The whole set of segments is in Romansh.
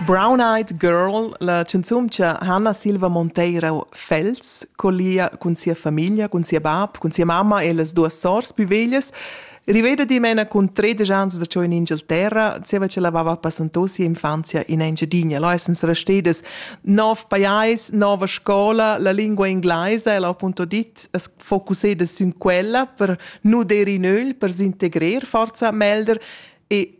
Brown-Eyed Girl, la chanzuncha Hanna Silva Monteiro Fels, collia cun sia famiglia, cun sia bab, cun sia mamma e las duas sors più veglias, riveda dimena cun tredisch ans da ciò in Inghilterra, zieva che l'aveva passanto sia infanzia in Engiadina. Là essens restedas nov pajais, nova scola, la lingua inglesa e l'ho appunto dit, es focusseda sün quella per nuder in öl, per s'integrer forza melder e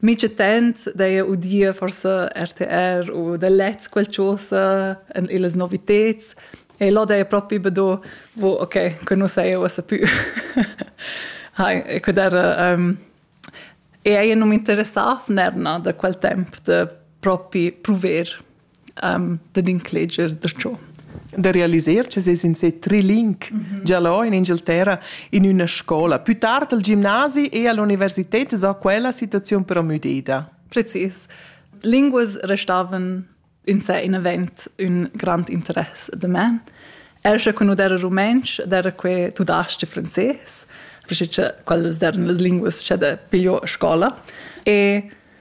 Mica tant d'eir udia forsa RTR u da lets qualchosa en illas noviteds e là d'eir propi be do wo okay, que nu saja uossa pü. Hai, e que d'era um, e eir nu m'interessà fnernà da quel temp da propi pruver um, dad incleger da ciò da realiser che ses in se triling mm -hmm. già là in Inghilterra in una scuola. Più tard al gimnasi e all'università sa quella situazione però müdida. Precis. Linguas restavan in sé in event un grand interesse de me. Er se quando era rumenc, era que tudasce francés, perché quelle erano le lingue che pigliò a scuola. E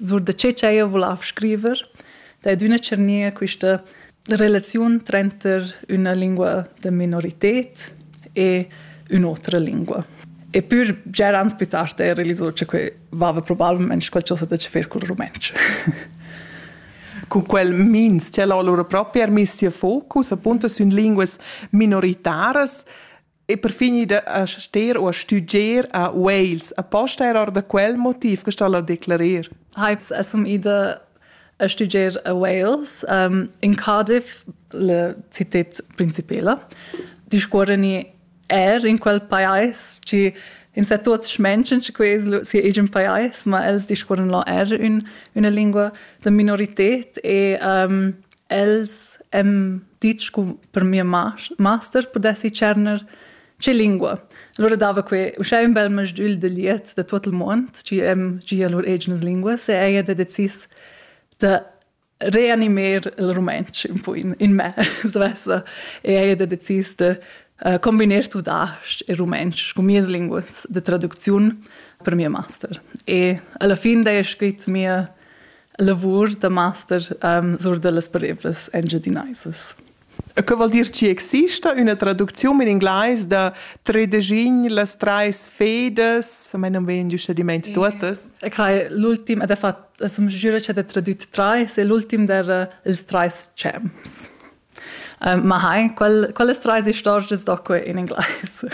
Sur da che ch'eir vulav scriver, da ed üna tschernia quista relaziun tranter üna lingua da minorited e ün'otra lingua. E pür già ans plü tard eir realisò cha que vaiva probabilmente qualchosa da che fer cul rumantsch. Con quel mins, c'è lura proprio er miss tia focus, appunto, sün linguas minoritaras, e per fin ida a ster u a stuger a Wales. Aposta era da quel motiv che sta a declarer. Heiz essum ida a stuger a Wales um, in Cardiff, la città principala. Discuorani er in quel pajais ci in sa tuots schmenschen che quei sia egin pajais, ma els discuoran lo er un, una lingua da minorität e um, els hem ditg cu per mia master pudessi tscherner che lingua. Allora dava que uschè ün bel masdül de liet da tot il mond, tgi hem gia lur egnas linguas e ella ha decis da reanimer il rumantsch un po in, in me, svessa, e ella ha decis de uh, combinar tudasch e rumantsch con mias linguas de traducziun per mia master. E alla fin da è scrit mia lavur da master um, sur dellas pareblas engiadinaisas. E che vuol dir ci exista una traduczione in inglese da tredegin las treis fedas, a me non vien giusto di mente totas. E crai l'ultim ed è fatto, som giura c'è de tradut treis e l'ultim der uh, ils treis cems. Uh, ma hai, quel, quelles treis istorgias da que in englais.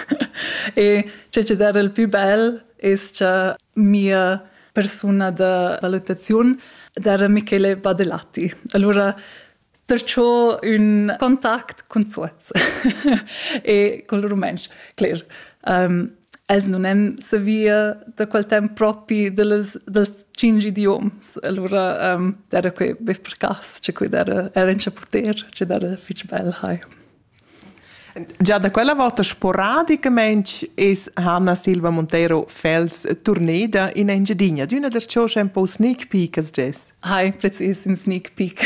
e ce che der il più bel es che mia persona da valutaziun era Michele Badelatti. Allora perciò un contact con Zuoz e col rumens, cler. Um, els non han savia da quel temp propi dels, dels cinc idioms. Allora um, era quei be per cass, che quei era, era in chaputer, che era fitch bel, hai. Già da quella volta sporadicamente es Hanna Silva Montero Fels turneda in Engiedinha, d'una der cios un po sneak peek as jess. Hai, precis, un sneak peek.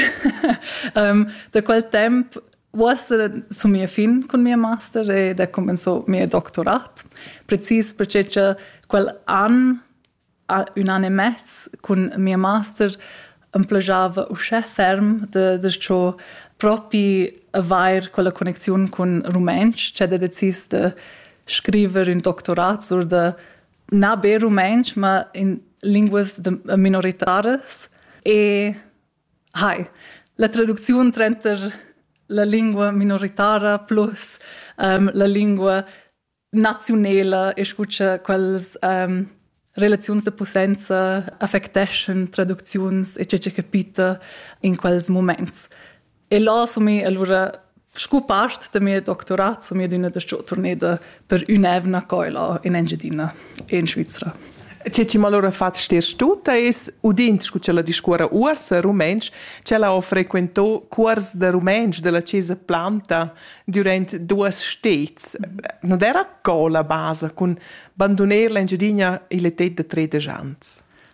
um, da quel temp Uossa sun mia fin cun mia master ed he cumenzò mia doctorat, precis perche cha quel an, ün an e mez cun mia master emplegiava uschè ferm da da cho propi avair quella connecziun cun rumentsch ch'ha decis da scriver ün doctorat sur da na be rumentsch, ma in linguas da minoritaras. E Hi. La traducziun tranter la lingua minoritara plus um, la lingua naziunela e scucha quels um, relaziuns de possenza affecteschan traducziuns e tge che capita in quels moments. E là assumi allora Sco part da mia doctorat sono io d'una da turneda per un'evna coila in Engiadina e in Svizra. Tge ti allora fatg stess tut es, udind scu che la discuora uossa rumentsch, che la ho frequentò cuors da rumentsch della Chiesa Planta durant duas stets. Non era co la basa cun bandoner l'Engiadina il etet da tredic ans?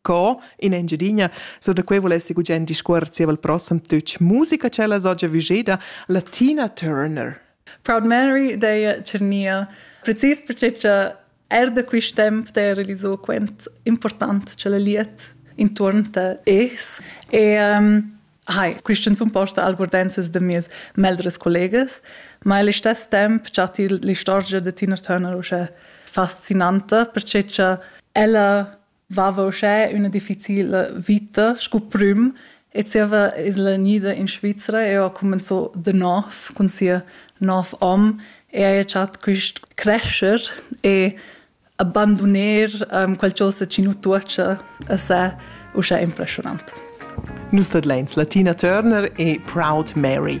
Co in Engiadina, so da quei volessi gugent discuor zievel prossem tuc musica cella sogia vugeda Latina Turner. Proud Mary dei Cernia, precis perché cha er da quist temp der realizò quent important ce la liet intorn ta es e um, Hi, Christian sun posta algordenses de mies meldres collegas, ma il stess temp chat il l'istorgia de Tina Turner usche fascinante perché cha ella vava uschè üna difficila vita scu prüm e zieva es la gnida in Svizra e ho cumanzò da nov cun sia nov hom e haja chat quist crescher e abanduner um, qualchosa chi nu tuocha a se uschè impressionant. Nus tadlains Latina Turner e Proud Mary.